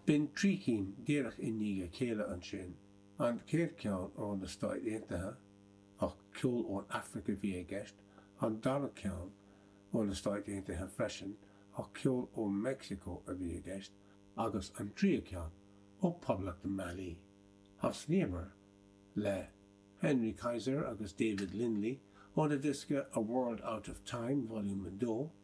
B'in trí cinn díreach i ndiaidh a chéile ansin, an chéad cheann ó na Stáit Aontaithe, ach ceol ón Afraic a bhí i gceist, an dara ceann ó na Stáit Aontaithe freisin, ach ceol ó Mheicsiceo a bhí i gceist, agus an tríú ceann ó Poblacht Mali. Thosnaíomar le Henry Kaiser agus David Lindley óna diosca A World Out of Time, Volume 2,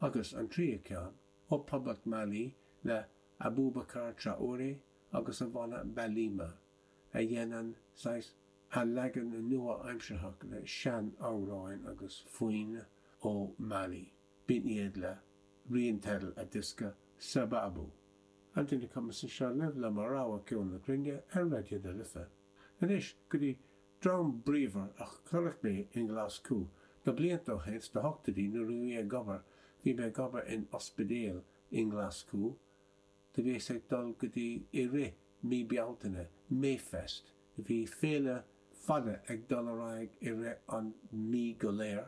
agus an tríú ceann, ó Phoblacht Mali le Aboubacar Traoré agus a bhanna Balima, a dhéanann saghas a' leagan nua-aimsearthach le sean-amhráin agus foinn ó Mali. B'in iad le rian teideal a diosca, Sababu. An duine cumasach anseo libh le mo rogha ceol na cruinne ar Raidió na Life. Anois go dtí Dream bríomhar a chonaic mé i nGlaschú. Na blianta ó shin, sna hochtaidí, nuair a bhí mé ag obair, bhí mé ag obair in ospidéal i nGlaschú. Do bhíos ag dul go dtí i rith mí Bealtaine, Mayfest. Do bhí féile fada ag dul ar aghaidh i rith an mhí go léir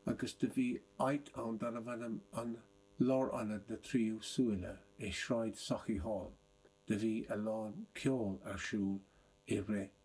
agus do bhí áit ann darbh ainm an Lárionad na Tríú Súile i Sráid Sauchiehall. Do bhí a lán ceoil ar siúl i rith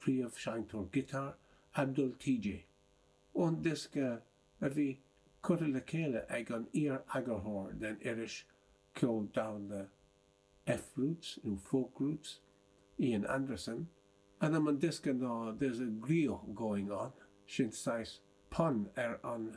príomhsheinnteoir giotáir, Abdul Tee-Jay. Ón diosca a bhí curtha le chéile ag an iar-eagarthóir den iris cheol domhanda F Roots, nó Folk Roots, Ian Anderson, ainm an diosca ná There's a Griot Going On, sin saghas pun ar an